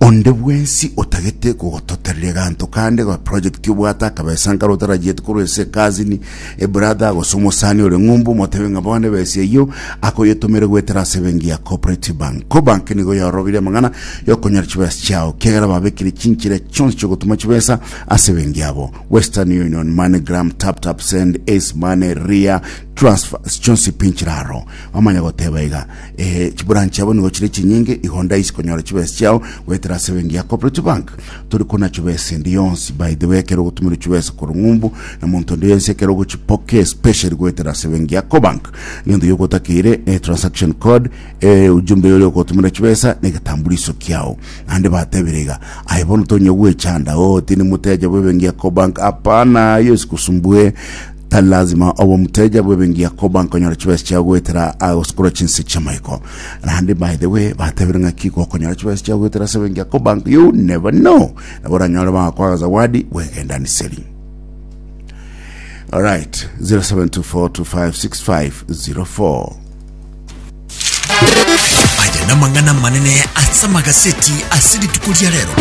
Onde bwensi otagete gogototerera eganto kande ga project obwate akabesa nkare otarachiete korwa ase ecousin, ebrother, gose omosani ore ng'umbu motebe ng'a bono ebesa eyio akoyetomere goetera ase ebenki ya Cooperative Bank. Cobank nigo yaorobirie amang'ana yokonyora chibesa chiao kiagera babekire chinchera chionsi chiogotuma chibesa ase ebenki yabo. Western Union, MoneyGram, TapTapSend, Ace Money, Ria, Transfers chionsi pinchire aro. Bamanya goteba iga. Ee, chiburani chiabo nigo chire chinyinge, igo ndaisi konyora chibesi chiao goetera ase ebenki ya Cooperative Bank. Tori kona chibesi endi yonsi. By the way, ekero ogotumerwa chibesa korwa ng'umbu na monto onde yonsi ekero ogochipokea especially goetera ase ebenki ya Cobank, egento gioka otakeire ne transaction code, e, ujumbe yoria okogotumerera chibesa na egetambuliso kiao. Naende batebire iga, aye bono tonya gwechanda, oo, tindi moteja bw'ebenki ya Cobank, hapana, aye esikusumbue. Tari lazima obe omoteja bw'ebengiya koba nkonyora chibesa chia goetera aa gosikora chinse chi'amaiko. Naende by the way batebire ng'aki gokonyora chibesa chia goetera ase ebengiya koba nk- you never know nabo oranyore bagakwa agazawadi bw'egendaniseri. Alright, 0724256504. Aya namang'ana amanene ase amagaseti ase rituko ria rero.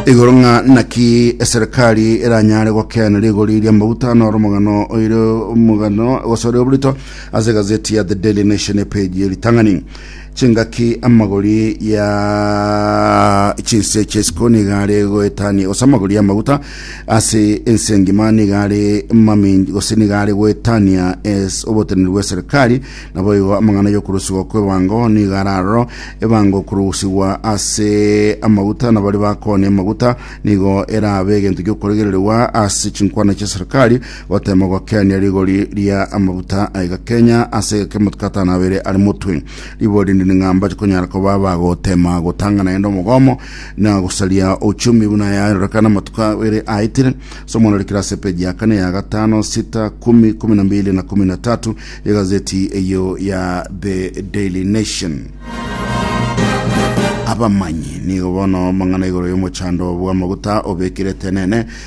igoro ng'a naki eserikari eranyare gokeana rigori ria maguta na oromogano oire omogano gose ore oborito ase gazeti ya the daily nation epage ye ritang'ani chingaki amagori ya chinse chesiko nigare goetania gose amagori y'amaguta ase ense engima nigare maminji gose nigare goetania es oboteneri bw'eserikari naboigo amang'ana y'okorusigwa kw'ebango nigare aroro ebango korusigwa ase amaguta nabari bakonia amaguta nigo erabe egento gi'okoregererwa ase chinkwana chi'eserikari Gotemogokenia rigori ria amaguta aiga Kenya ase egekemotwe atano abere ari motwe. Ribo rinde ni ng'a mbache konyara koba bagotema gotanga naende omogomo na gosaria uchumi buna yarorekana amatuko abere aitire. Somo narikire ase epeji ya kane ya gatano sita kumi kumi na mbili na kumi na tatu ya gazeti eyo ya The Daily Nation. Abamanyi nigo bono mang'ana igoro y'omochando bw'amaguta obekire tenene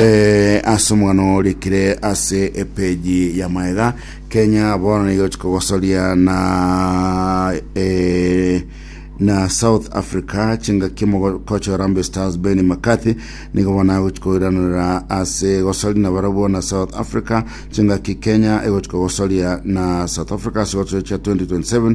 Eh, ase omwana orikire ase epeji ya maega kenya bono nigo chikogosoria na eh, na south africa chingaki mogokocha orambe stars ben mccarthy nigo bono agochikoiranora ase gosori na barabwo na south africa chingaki kenya egochikogosoria na south africa ase gochia 2027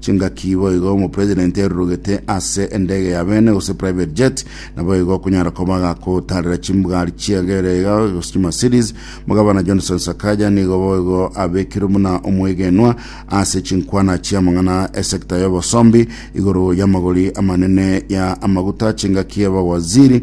Chingaki boigo omopresident erurugete ase endege ya bene gose private jet, naboigo okonyara koba agakotarera chimbugari chiagere iga gose chimercedes. Mogabana Johnson Sakaja nigo boigo abekirwe buna omwegenwa ase chinkwana chiamang'ana esector y'obosombi igoro y'amagori amanene ya amaguta chingaki abawaziri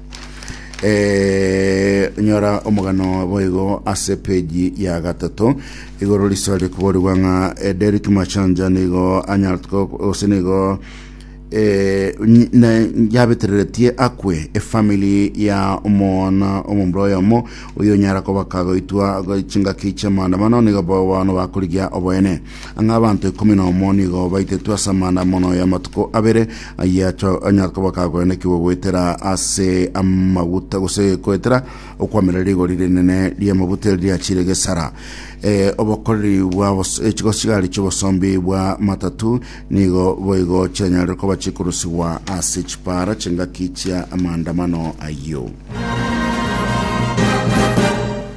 Eh, nyora omogano boigo ase peji ya gatato igoro riso rikoborigwa ng'a eh, Derrick Machanja nigo anyartko gose nigo eh, nyi- na- yabetereretie akwe efamili ya omwana omomura oyomo oyo onyara koba kagoitwa chingaki chi'amaandamano nigo bono bakorigia oboene Ang'e abanto ikomi na omo nigo baitetwe ase amaandamano y'amatuko abere, ayio acho onye koba kagoenekigwa goetera ase amaguta gose goetera okwamera rigori rinene ri'amaguta eri riachire gesara. Eh, obokoreri bwa bos- eh, chigosigari chi'obosombi bwa matatu nigo boigo chianyarire koba chikorusigwa ase chipara chingaki chia amaandamano ayio.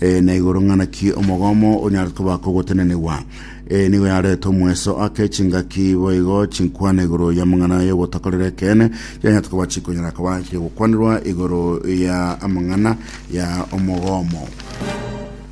Ee, na igoro ng'a naki omogomo onyare koba kogotenenigwa. Ee, nigo yarete omweso ake chingaki boigo chinkwana igoro y'amang'ana y'ogotakorera ekeene, chianyarete koba chikonyara koba chigokwanirwa igoro ya amang'ana ya omogomo.